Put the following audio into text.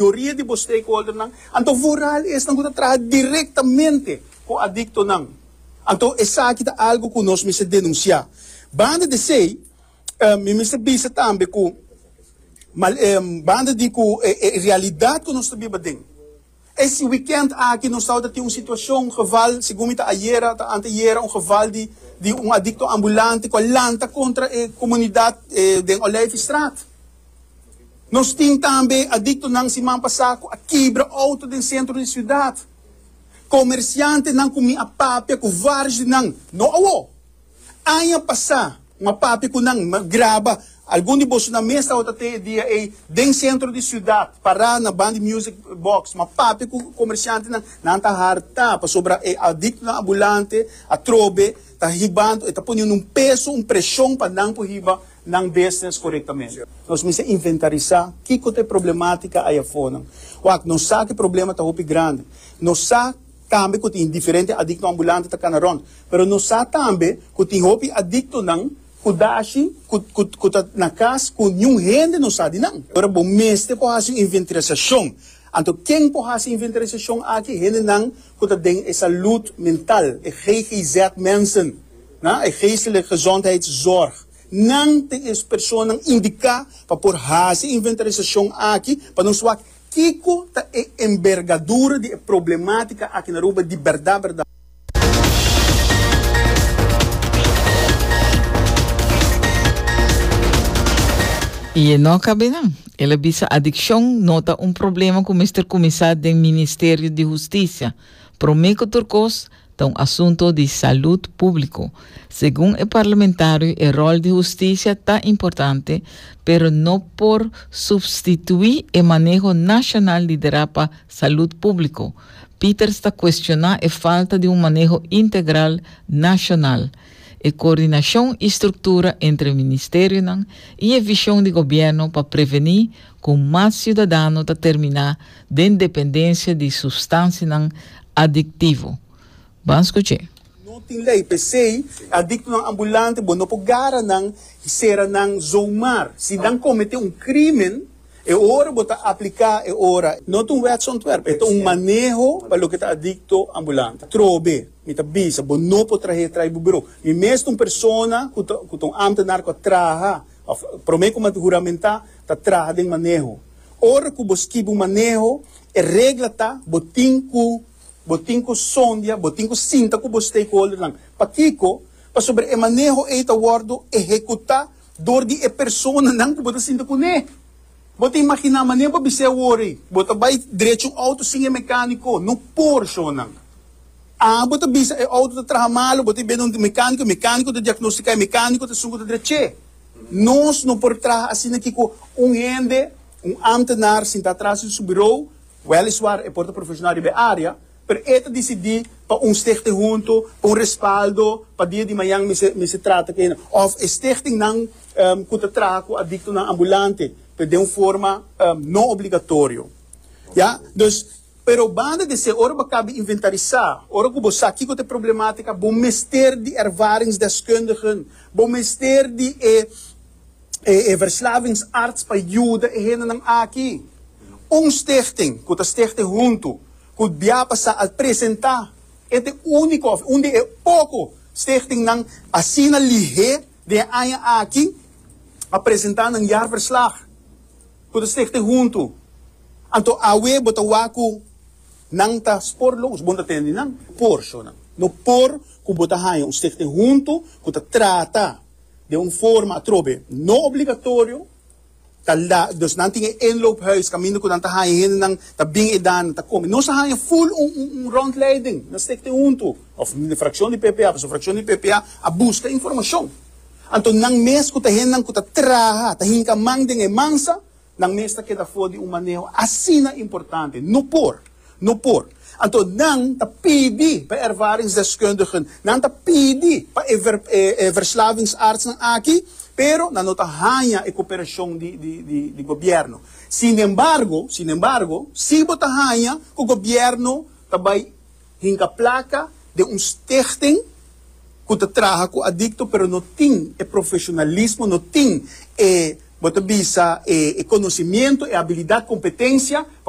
mayoria di bo stakeholdernan, anto vooral esnan ku ta traha direktamente ku adiktonan. Anto esaki ta algu ku nos mester denunsiá. Banda di esei, mi mester bisa tambe ku mal banda di ku e realidat ku nos ta biba den, e si wikènt aki nos tabata tin un situashon, un geval, segun mi ta ayera, ta anteayera, un geval di di un adikto ambulante ku a lanta kontra e komunidat den Olijfstraat. Nos tin tambe adiktonan siman pasá ku a kibra outo den sentro di siudat. Komersiantenan ku mi a papia ku vários di nan, no awo, aña pasá mi a papia ku nan, mi a graba algun di boso nan mes tabata te e dia ei den sentro di siudat pará na ban di music box. Mi a papia ku komersiantenan, nan ta hartá pasobra e adiktonan abulante atrobe ta hiba anto e ta poniendo un peso, un preshon pa nan por hiba. nan business korektamente. Nos mester inventarisá kiko ta e problemátika ai afornan. Wak, nos sa ku e problema ta hopi grandi. Nos sa tambe ku tin diferente adikto ambulante ta kana rònt. Pero nos sa tambe ku tin hopi adiktonan ku dashi ku ku ku ta na kas ku niun hende no sa di nan. Ora bo mester por hasi un inventarasashon, anto ken por hasi e inventarasashon aki? Hendenan ku ta den e salud mental, e GGZ mensen. Na e Geestelijk Gezondheidszorg nan tin e personanan indiká pa por hasi e inventarisashon aki pa nos wak kiko ta e enbergadura di e problemátika aki na Aruba di bèrdat bèrdat. I e no kab'é nan. El a bisa adikshon no ta un problema ku mester kuminsá den Ministerio di Hustisia. Promé ku tur kos, Ta un asunto di salud público. Segun e parlamentario e rol di husticia ta importante pero no por substitui e maneho nacional di dera pa salud público. Peters ta cuestiona e falta di un maneho integral nacional, e coordinacion y structura entre e ministerionan y e vision di gobierno pa preveni, ku mas siudadano ta terminá den dependensia di substansianan adiktivo. Ban skuch'é. No tin lei, p'esei adiktonan ambulante bo no por gara nan i sera nan zomaar. Si nan kometé un krímen, e ora bo ta apliká e ora. No ta un wetsontwerp, e ta un maneho pa loke ta adikto ambulante. Trobe, mi ta bisa, bo no por trah'é trai bo birou. Mi mes ta un persona ku ta ku ta un ámtenar ku a traha òf promé ku m'a huramentá Ta traha den maneho. Ora ku bo skibi un maneho, e regla ta bo tin ku bo tin ku sondia, bo tin ku sinta ku bo stakeholdernan. Pakiko? Pasobra e maneho ei ta wòrdu ehekutá dor di e personanan ku bo ta sinta kuné. Bo ta imaginá mané bo bis'é awor ei? Bo ta bai drechi un outo sin e mekániko? No por, shonnan. A Bo ta bisa e outo ta traha malu, bo ta biaha dun mekániko, e mekániko ta diagnostiká, e mekániko ta sungu ta drech'é. Nos no por traha asina ki ku un hende, un ámtenar sintá atras di su birou, wèliswar e por ta profeshonal riba e área, pero e ta disidí pa un stichting huntu, pa un respaldo, pa dia di mañan mi ser mi ser trata ku enda, òf e stichtingnan ku ta traha ku adiktonan ambulante pero den un forma no obligatorio, ya. Pero banda di esei, ora bo a kaba di inventarisá, ora ku bo sa kiko ta e problemátika, bo mester di ervaringsdeskundigen, bo mester di e e verslavingsarts pa yuda e hendenan aki. Un stichting ku ta stichte huntu ku Biapa sa al presentá e ta e úniko òf un di e poko stichtingnan asina lihé den e aña aki a presentá nan jaarverslag ku ta stichte huntu. Anto awe bo ta wak cu nan ta spor lobos, bo no ta tene ni nan porcionnan. No por cu bo ta haya un stichting hunto cu ta trata den un forma atrobe no obligatorio, ta la, dus nan tin e inloophuis caminda cu nan ta haya hendenan ta bin eda, nan ta come. Nos a haya full un, un, un rondleiding na stichting hunto, of de fraccion di ppa, pasobra fraccion di ppa a busca informacion. Anto nan mes cu ta hendenan cu ta traha, ta hinca man den e mansa, Nan mes ta keda for di un maneho asina importante. No por! No por! Anto nan ta pidi pa e ervaringsdeskundigen, nan ta pidi pa e e verslavingsartsnan aki, pero nan no ta haña e koperashon di di di di gobièrnu. Sinembargo, sinembargo, si bo ta haña ku gobièrnu ta bai. Hinka plaka den un stichting ku ta traha ku adikto pero no tin e profeshonalismo, no tin e, bo ta bisa, e konosimiento, e abilidat, kompetensia pa.